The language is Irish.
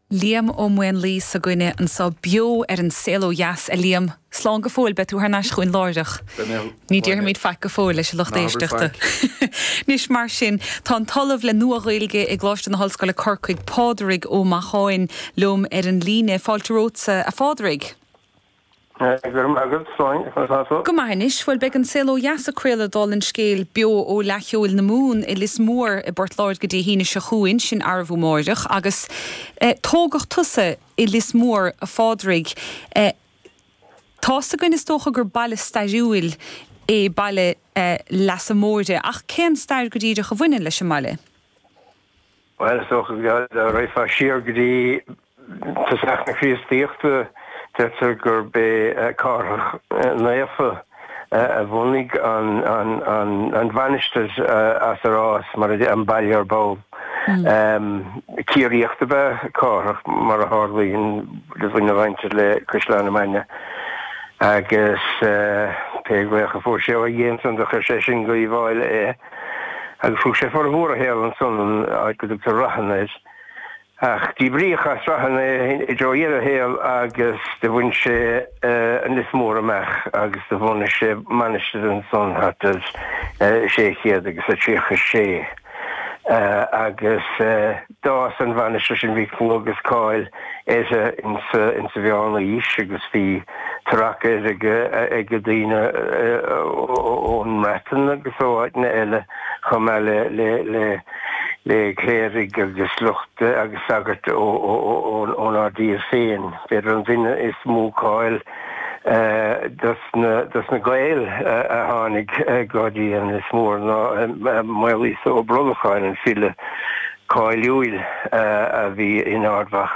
Liam Ó Maonlaí againne ansan beo ar An Saol Ó Dheas. A Liam, slán go fóill, beidh tú thar n-ais chugainn láithreach. Ní déarfaimid faic go fóill leis an lucht éisteachta. Anois mar sin, tá an tOllamh le Nua-Ghaeilge i gColáiste na hOllscoile Corcaigh, Pádraig Ó Macháin, liom ar an líne. Fáilte romhatsa, a Phádraig. Go raibh maith agat. Go maith anois, bhuel beidh An Saol Ó Dheas ag craoladh, dála an scéil, beo ó Fhleadh Cheoil na Mumhan i Lios Mór i bPort Láirge Dé hAoine seo chugainn, sin arbh amárach, agus eh tógadh tusa i Lios Mór a Phádraig, eh tá 'fhios againn is dócha gur baile stairiúil é baile eh Leasa Móire ach cén stair go díreach a bhaineann leis an mbaile? Bhuel, is dócha go raghfar siar go dtí tosach na Críostaíochta, deirtear gurb é Cárthach Naofa a bhunaigh an mhainistir as ar fhás, an baile ar ball. Ciarraíoch ab ea Cárthach, mar a tharlaíonn, do bhain sé le Caisleán na Mainge, agus pé glaoch a fuair sé ó Dhia ansan do chuaigh sé sin go hUíbh Fháilí. agus thug sé formhór a shaol ansan, an áit go dtugtar Rathan air. Ach díbríodh as Rathan é i dtreo dheireadh a shaol agus do bhain sé an Lios Mór amach agus do bhunaigh sé mainistir ansan thart ar 600 agus a 36 agus D'fhás an mhainistir sin, a bhí clú agus cáil uirthi ins a mheánaois, agus bhí tarrac uirthi ag daoine ón mBreatain agus ó áiteanna eile, chomh maith le cléirigh agus lucht agus sagairt ónár dtír féin. B'fhéidir an duine is mó cáil do dos na Gaeil a tháinig go dtí an Lios Mór ná Maolíosa Ó Brolcháin, an file cáiliúil a bhí in Ard Mhacha.